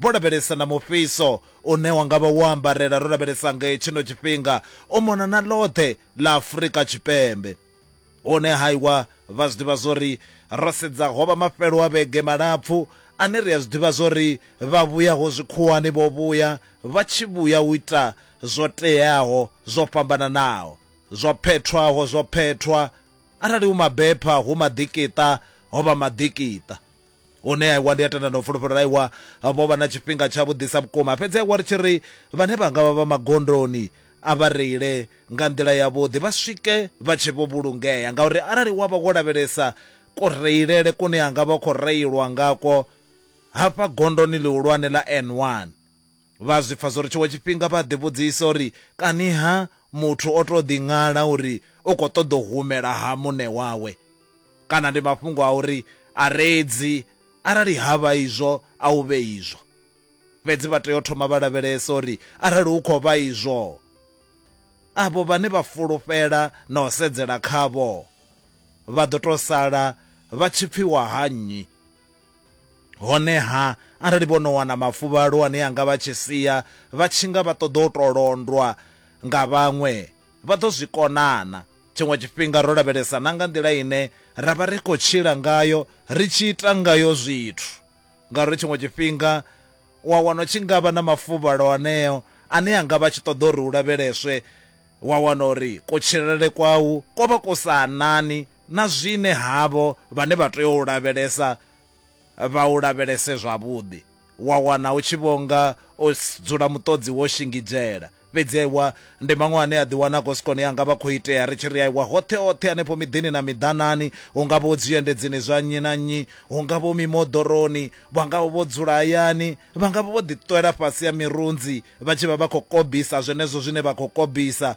Vho lavhelesa na mufhiso une wa nga vha wo ambarela ro lavhelesa nge tshino tshifhinga u mona na ḽoṱhe ḽa Afrika Tshipembe. Hone ha iwa vha zwi ḓivha zwo ri ro sedza ho vha mafhelo a vhege malapfu ane ri a zwi ḓivha zwo ri vhavhuyaho zwikhuwani vho vhuya vha tshi vhuya u ita zwo teaho zwo fhambananaho, zwo phethwaho zwo phethwa, arali hu mabepha hu maḓikiṱa ho vha maḓikiṱa. Hune a iwa ndi a tenda na u fulufhela uri a iwa vho vha na tshifhinga tshavhuḓisa vhukuma. Fhedzi a iwa ri tshi ri vhane vha nga vha vha magondoni a vha reile nga nḓila yavhuḓi vha swike vha tshe vho vhulungea ngauri arali wa vha wo lavhelesa kureilele kune ha nga vha hu khou reilwa ngakwo hafha gondoni ḽihulwane ḽa N1 Vha zwi pfa zwo ri tshiṅwe tshifhinga vha a ḓivhudzisa uri, Kani-ha muthu o tou ḓiṅwala uri u khou ṱoḓa u humela ha muṋe wawe? Kana ndi mafhungo a uri a re edzi? Arali ha vha izwo, a hu vhe izwo. Fhedzi vha tea u thoma vha lavhelesa uri arali hu khou vha izwo, avho vhane vha fulufhela na u sedzela khavho vha ḓo tou sala vha tshi pfiwa ha nnyi? Honeha, arali vho no wana mafuvhalo ane a nga vha tshi sia vha tshi nga vha ṱoḓa u tou londwa nga vhaṅwe, vha ḓo zwi kona-na? Tshiṅwe tshifhinga ro lavhelesa na nga nḓila ine ra vha ri khou tshila ngayo, ri tshi ita ngayo zwithu. Ngauri tshiṅwe tshifhinga u a wana u tshi nga vha na mafuvhalo aneo ane a nga vha a tshi ṱoḓa uri u lavheleswe, wa wana uri kutshilele kwau ko vha ku sa anani na zwine havho vhane vha tea u u lavhelesa vha u lavhelese zwavhuḓi, wa wana u tshi vho nga o dzula muṱodzi wo shingizhela. Fhedzi aiwa, ndi maṅwe ane a ḓiwana a khou si kone, a nga vha khou itea ri tshi ri aiwa hoṱhe-hoṱhe hanefho miḓini na miḓanani, hu nga vha hu zwiendedzini zwa nnyi na nnyi, hu nga vha hu mimoḓoroni, vha nga vha vho dzula hayani, vha nga vha vho ḓiṱwela fhasi ha mirunzi vha tshi vha vha khou kobisa zwenezwo zwine vha khou kobisa.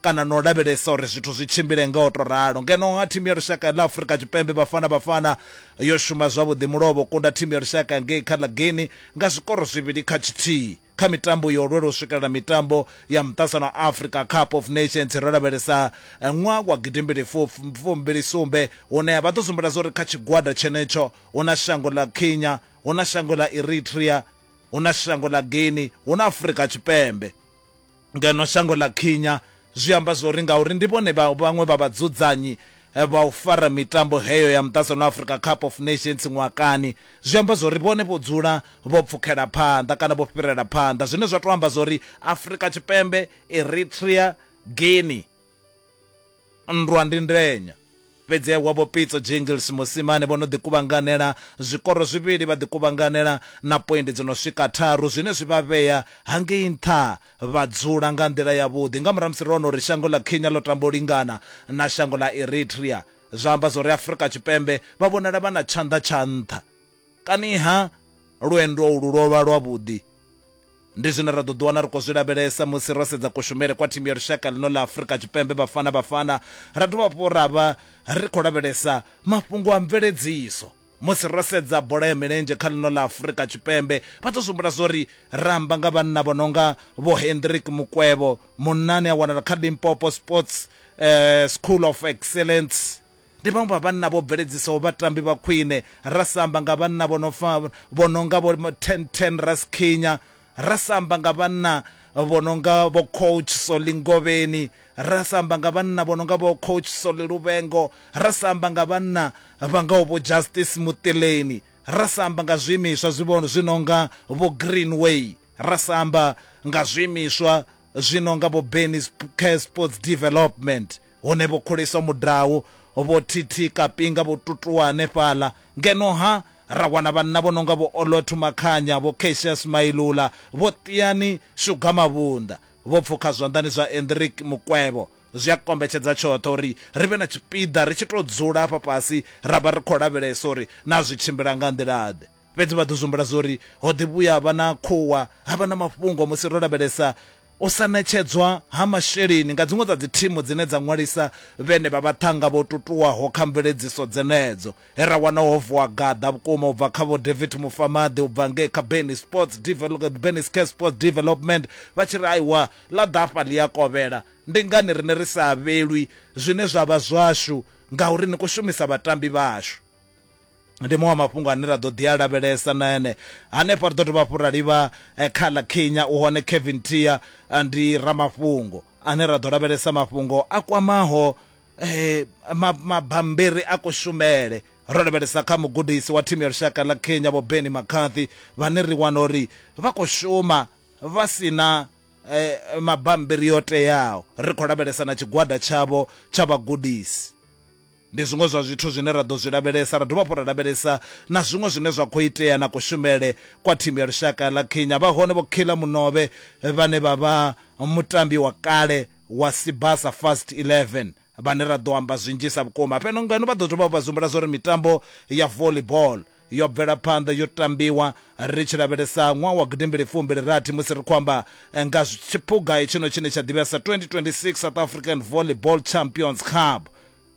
kana na u lavhelesa uri zwithu zwi tshimbile nga u tou ralo. Ngeno-ha thimu ya lushaka ya ḽa Afrika Tshipembe Bafana Bafana yo shuma zwavhuḓi mulovha u kunda thimu ya lushaka ya ngei kha ḽa Guinea nga zwikoro zwivhili kha tshithihi kha mitambo yo lwela u swikelela mitambo ya muṱasano wa Afrika Cup of Nations ro lavhelesa ṅwaha wa gidimbili fumbili sumbe hune vha ḓo sumbedza uri kha tshigwada tshenetsho hu na shango ḽa Kenya, hu na shango ḽa Eritrea, hu na shango ḽa Guinea, hu na Afrika Tshipembe. ngeno shango ḽa Kenya zwi amba zwa uri ngauri ndi vhone vhaṅwe vha vhadzudzanyi eh, vha u fara mitambo heyo ya muṱaṱsano Africa Cup of Nations ṅwakani zwi amba zwa uri vhone vho dzula vho pfukela phanḓa kana vho fhirela phanḓa zwine zwa tou amba zwa uri Afrika Tshipembe Eritrea Guinea Nndwa ndi ndenya. Fhedzihwa Vho Pitso Jingles Mosimane vho no ḓi kuvhanganela zwikoro zwivhili vha ḓi kuvhanganela na poindi dzo no swika tharu zwine zwi vha vhea hangei nṱha vha dzula nga nḓila yavhuḓi nga murahu ha musi ro wana uri shango ḽa Kenya ḽo tamba u lingana na shango ḽa Eritrea zwa amba zwa uri Afrika Tshipembe vha vhonala vha na tshanḓa tsha nṱha. Kani-ha lwendo ulu lwo vha lwavhuḓi? Ndi zwine ra ḓo ḓiwana ri khou zwi lavhelesa musi ro sedza kushumele kwa thimu ya lushaka ḽino ḽa Afrika Tshipembe Bafana Bafana ra dovha hafhu ra vha ri khou lavhelesa mafhungo a mveledziso. Musi ro sedza bola ya milenzhe kha ḽino ḽa Afrika Tshipembe, vha ḓo zwi humbula zwa uri ra amba nga vhanna vho no nga Vho Hendrick Mukwevho, munna ane a wanala kha Limpopo Sports School of Excellence. Ndi vhaṅwe vha vhanna vho bveledzisaho vhatambi vha khwine, ra sa amba nga vhanna vho no fa vho no nga vho Ten Ten Rasikhinya, ra sa amba nga vhanna vho no nga vho Coach Solly Ngovheni, ra sa amba nga vhanna vho no nga vho Coach Solly Luvhengo, ra sa amba nga vhanna vha ngaho vho Justice Muṱileni, ra sa amba nga zwiimiswa zwi vho zwi no nga vho Greenway, ra sa amba nga zwiimiswa zwi no nga vho Benny's Care Sports Development. Hone vho khulisa mudau, vho thithika pinga vho tutuwa hanefhaḽa. Ngeno-ha, ra wana vhanna vho no nga Vho Olothu Makhanya, Vho Cassius Mailula, Vho Tiani Sugar Mavhunda, vho pfukha zwanḓani zwa Hendrick Mukwevho. Zwi a kombetshedza tshoṱhe uri ri vhe na tshipiḓa ri tshi tou dzula hafha fhasi ra vha ri khou lavhelesa uri naa zwi tshimbila nga nḓila-ḓe. Fhedzi vha ḓo zwi humbula zwa uri ho ḓi vhuya ha vha na khuwa, ha vha na mafhungo musi ro lavhelesa u sa ṋetshedzwa ha masheleni nga dziṅwe dza dzithimu dzine dza ṅwalisa vhenevha vhaṱhannga vho tutuwaho kha mveledziso dzenedzo, he ra wana ho vuwa gaḓa vhukuma u bva kha Vho David Mufamaḓi u bva ngei kha Benny Sports Develop, Benny's Care Sports Development, vha tshi ri, Aiwa, ḽa ḓafha ḽi a kovhela. Ndi ngani riṋe ri sa avhelwi zwine zwa vha zwashu? Ngauri ni khou shumisa vhatambi vhashu. Ndi maṅwe a mafhungo ane ra ḓo ḓi a lavhelesa na ene. Hanefho ri ḓo dovha hafhu ra livha kha ḽa Kenya, u hone Kevin Tia ndi ramafhungo ane ra ḓo lavhelesa mafhungo a kwamaho mabammbiri a kushumele, ro lavhelesa kha mugudisi wa thimu ya lushaka ḽa Kenya Vho Benni McCarthy vhane ri wana uri vha khou shuma vha si na mabammbiri o teaho. Ri khou lavhelesa na tshigwada tshavho tsha vhagudisi. Ndi zwiṅwe zwa zwithu zwine ra ḓo zwi lavhelesa. Ra dovha hafhu ra lavhelesa na zwiṅwe zwine zwa khou itea na kushumele kwa thimu ya lushaka ḽa Kenya. Vha hone Vho Killer Munobe vhane vha vha mutambi wa kale wa Sibasa Fast 11 vhane ra ḓo amba zwinzhisa vhukuma fheno ngeno. Vha ḓo dovha vha zwi humbula zwa uri mitambo ya volley ball yo bvela phanḓa yo tambiwa ri tshi lavhelesa ṅwaha wa gidimbili fumbili rathi musi ri khou amba eh, nga tshiphuga hetshino tshine tsha ḓivhea sa 2026 South African Volleyball Champions Cup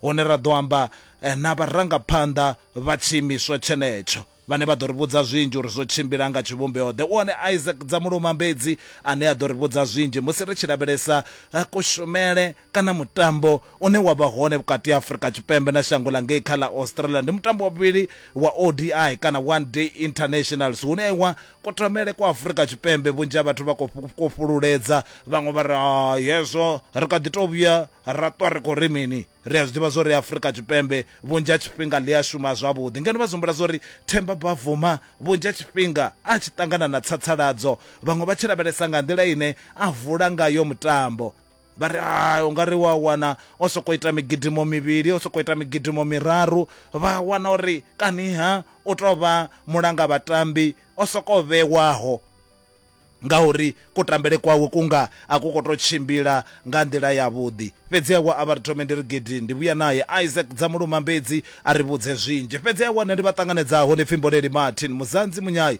hune ra ḓo amba eh, na vharangaphanḓa vha tshiimiswa tshenetsho vhane vha ḓo ri vhudza zwinzhi uri zwo tshimbila nga tshivhumbeo the one isaac dzamuluma mbedzi ane a ḓo ri vhudza zwinzhi musi ri tshi lavhelesa eh, kushumele kana mutambo une wa vha hone vhukati ha Afrika Tshipembe na shango ḽa ngei kha ḽa Australia ndi mutambo wa vhuvhili wa ODI kana One Day Internationals hune wa kutamele kwa Afrika Tshipembe vhunzhi ha vhathu vha khou fhululedza vhaṅwe vha ri ah, hezwo ri kha ḓi tou vhuya ra ṱwa ri khou ri mini ri a zwi ḓivha zwo ri Afrika Tshipembe vhunzhi ha tshifhinga ḽi a shuma zwavhuḓi ngeno vha zwi zwo ri Themba Bavuma vhunzhi ha tshifhinga a tshi ṱangana na tsatsaladzo vhaṅwe vha tshi lavhelesa nga nḓila ine a vula ngayo mutambo vha ri a u nga ri wa wana o sokou ita migidimo mivhili o sokou ita migidimo miraru vha wana uri kaniha u tou vha mulanga vhatambi o sokou vhewaho ngauri kutambele kwawe kunga a ku khou tou tshimbila nga nḓila yavhuḓi fhedzi a wa a vha ri thome ndi ri gidi ndi vhuya naye isaac dza muluma mbedzi a ri vhudze zwinzhi fhedzi a wane ndi vha ṱanganedzaho ndi pfimboleli martin muzanzi munyai